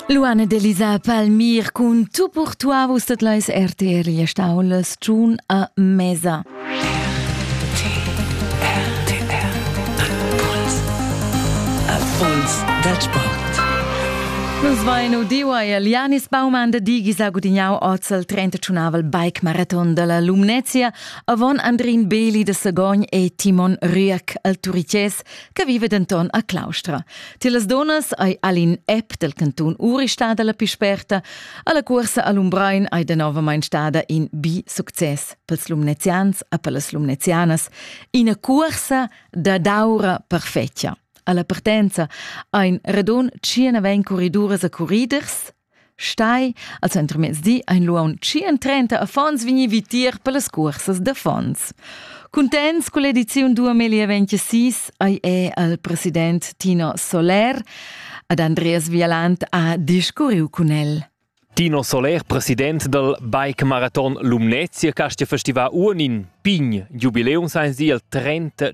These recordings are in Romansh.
Luana ed Elisa Palmir cun Tu pour toi vus dat leis RTL e stau las June a mesa. Erfolgs Wettsport. Nus vain udiua il Janis Baumann de Digis a gudignau ozel 31avel bike marathon della Lumnezia avon Andrin Beli de Sagogn e Timon Rüerk al Turiches che vive denton a Claustra. Tilas donas ei all'in app del cantun Uri stada la più sperta, alla cuorsa a Lumbrein ei denovamein stada in bi success pels lumnezians e per las lumnezianas, ina cuorsa da daura perfetga. Alla partenza ein radon 19 corriduras e corriders, Stai, als entremezdi ein lu aunc 30 affons vegni vitier per las cursas d'affons. Cuntents con l'ediziun 2026 ei è al president Tino Soler ad Andreas Vialant ha discurriu cun el. Tino Soler, president dal Bike Marathon Lumnezia, Castia Festival Unin. Pign, Jubiläum sein sie il 30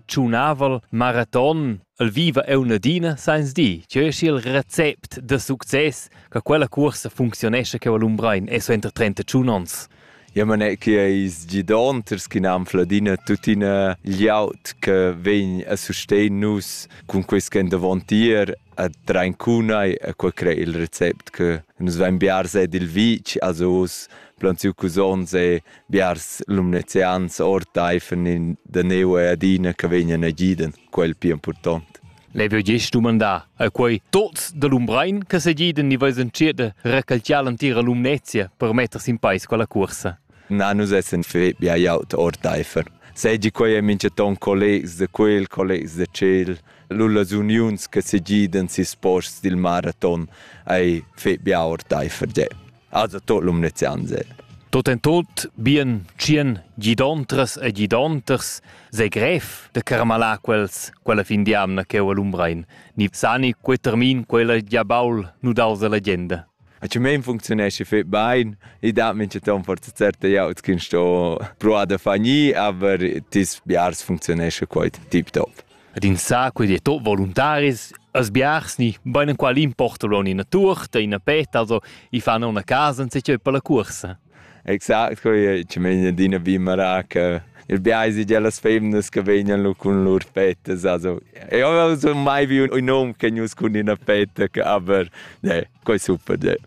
Maratón. El viva aunc adina sains dir cheu eschi il recept da success che quella cuorsa funcziunescha cheu a Lumbrein e suenter trentatschun onns. Ja man è che eis gidonters che nam fladina tuttina gliaut che vegn a sustegn nus cun quest endavontier a Traincunai a quel cre il recept che nus vain biars ed il vic also os planziu cusons e biars lumnezians orteifen in da neu adina che vegnan a giden. quel pia impurtont. Lei veu gest dumandar a quei tots da Lumbrein che segiden ni veis entschiet recalciar l'antira Lumnezia per mettersi in peis quella cursa. Na, nus essen fetg bia jaut ordeifer. Segi quei è mincheton collegs de quel, collegs de tschel, lullas uniuns che segiden sis posts dil maraton ei fetg bia ordeifer ge. Also tot l'um ne zianzel. Tot en tot bien tschien gidontras e gidonters se gref de carmalar quels quella fin di amna cheu a Lumbrein, ni sani quei termin quella gia baul nu dals alla legenda. A ci men functionesce fet bain, i da mince ton forza certa ja ut kin sto proa da fani, aber tis biars functionesce quoit tip top. Ed insaco ed tot voluntaris, as biars ni beinenqual importa lon ina tuorta, ina petta, also i fan una casa insatgei per la cuorsa. Exact, quei ci meina adina bimara che il biais di las femnas che vegnan lu cun lur pettas, also io non sono mai vi un hom che nus cun ina petta, aber ne, quei super de.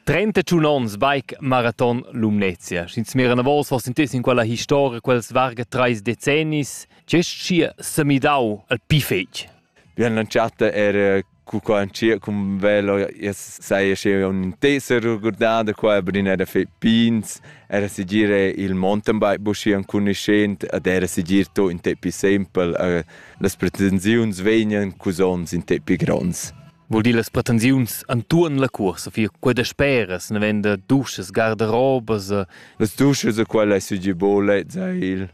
31 ons bike marathon Lumnezia. Sch'ins mira una volta, fosse intesi in quella historia, quels varga treis decennis, Gest schi semidau al pi fetg. Bien l'entschatta era cu qua in cia cum velo sai sche un teser regurdada qua brin era fe pins era sigir il mountain bike bushi an cuniscent ad era sigir to in tepi simple uh, las pretensiuns vegnan cusons in tepi grons Vuol dir las pretensiuns antuon la cursa, fia quella speras, ne venda duschas, gardarobas. Las duschas a quella è sigir bolet, sai il.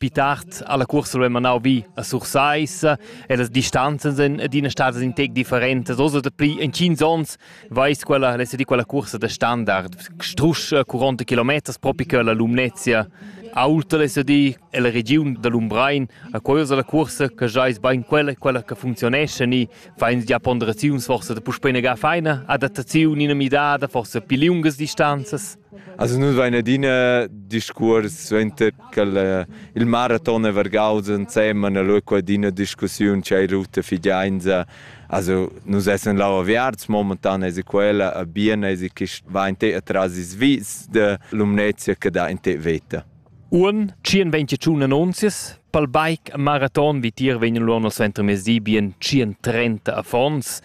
Pli tard ha la cuorsa lu manau vi a Sursaissa e las distanzas en adina stadas in tec differentas. Oz dapi entgins onns veis quella l'esedi quella cuorsa da standard strusch curonta kilometers propi che la Lumnezia. Aulta l'esedi e la regiun da Lumbrein a quella la cuorsa che jais bein quella quella che funzionesce ni fein gia ponderaziuns forse da puspei negar feina adattaziun in midada forse pli liungas distanzas. Also nu vain adina discuors suenter ch'el il maraton è vargaus ensemen, allura qua adina discussiun c'è ruta fidiainza. Also nus essan là aviarts, momentan esa quella a bien esa chi va in te atras is vis da Lumnezia che dà in te veta. Uonn tschien ventgatschun annunzias pel bike a maraton vitier vegnan lura nel centermezdi bien tschient-trenta affons.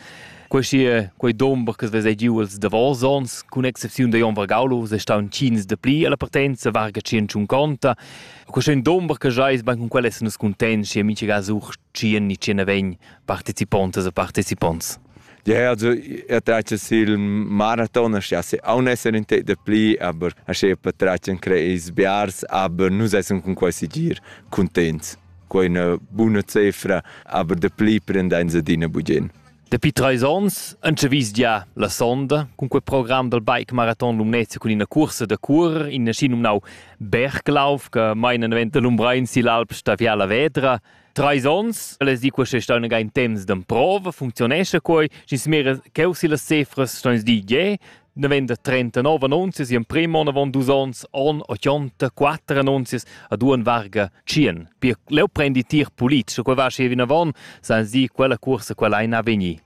Questi quei dumber che vesa giu els davos ons, cun excepziun da Jon Vargaulus, è staun tschins da pli alla partenza varga tschient-tschunconta. Questi dumber che jais ban cun quel essan nus cuntents e mincha ga such tschien ni tschena vegn partecipontas e parteciponts. Ja, also er traccia sil maraton, ja se aun esser in te de pli, aber asche per traccia creis biars, aber nus esser con quasi gir contents. Quei una buna cifra, aber de pli prendein se dina bugin. Dapi treis ons anche vis gia la sonda cun quel program dal Bike Marathon Lumnezia cun ina cursa da cur in aschi numnau Berglauf che mai non venta l'umbra in si l'alp staviala vedra Treis ons, les di questa staun in temps d'emprova, funzionesce quei, sch'ins mira cheu si las cifras ston di ge, ne venda 39 annunzias, in prim on avon dus ons, on 84 annunzias, ad un varga 100. Pia leu prendi tir politisch, quei va schi vinavon, sans di quella cursa quella ein a vegni.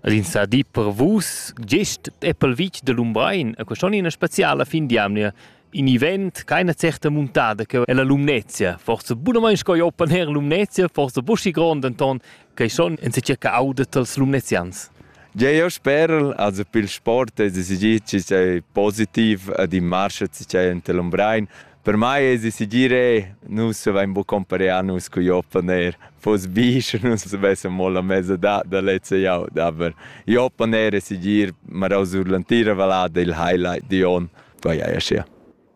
Ed ins sa di per vus, gest Apple Beach da Lumbrein, e quest onn ina speciala fin d'jamnia in event keine certe muntada che è la Lumnezia. Forse bunamain sco Open Air Lumnezia, forse buschi grond Anton, che schon en se circa audet als Lumnezians. Ja, io spero, also per il sport, es es giet ci sei positiv ad in marsch ci sei ante Lumbrein. Per mai es decidir e nus avain buca compareà nus co Job van eir fos bisch nus avessan mo la mezza da da lezza jau aber Job van eir decidir marau sur l'antira vallada il highlight di on vai ja sia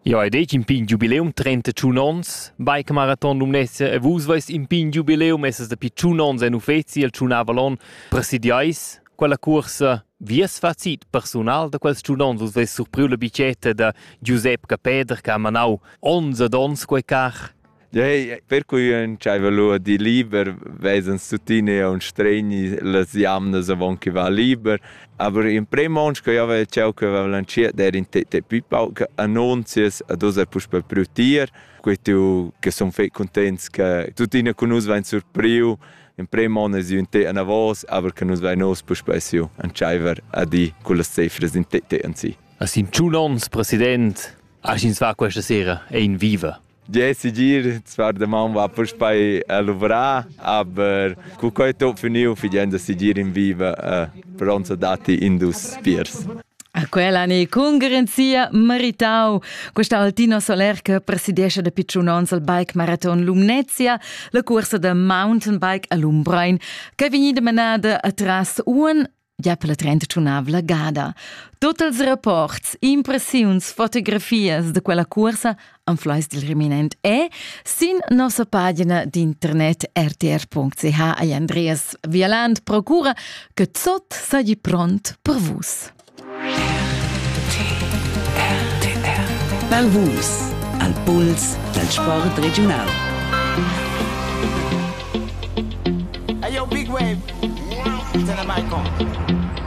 Ja, ed ich in pign Jubiläum 31 ons. Bike Marathon Lumnezia e vus vais in pign Jubiläum, es es dapi 1 ons en uffezi al Tschun Avalon presidiais. Quella cuorsa vi es facit persunal da quels giunons vus veis surpriu la bicetta da Giusep Capeder che ha manau ons ed ons quei car. Ja, hey, per cui ün c'aiva lua di liber, vezans tuttina un stregni las jamnas avon chi va liber, aber in prem ons che io avevo ciao che avevo lanciato era in te te pipau che annunzias a dosa puspe prutier, quei tu che son fei contents che tuttina con us vain surpriu Emprem on es ün té anavos, aber che nus vain uss puspei siu entscheiver a dir cullas cifras in té té anzi. A sim tschun ons, president, as ins va questa sera è in viva. Ja, sigir, zwar der Mann war bei Luvra, aber cu coi to finiu fidenda sigir in viva per onza dati indus piers. A quella ni congrensia meritau. Questa Altino Soler che presidiesce da picciun ons al bike marathon Lumnezia, la cursa da mountain bike a Lumbrein, che è vegnida menada atras un ja per la 35 gada. Tutti i rapporti, impressioni, fotografias de quella cursa Anfleis dil reminent è sin nossa pagina d'internet rtr.ch ei Andreas Vialand procura che Zot sei pront per vus. Per vus, al puls dal sport regional. Hey yo, Big Wave, turn the mic on.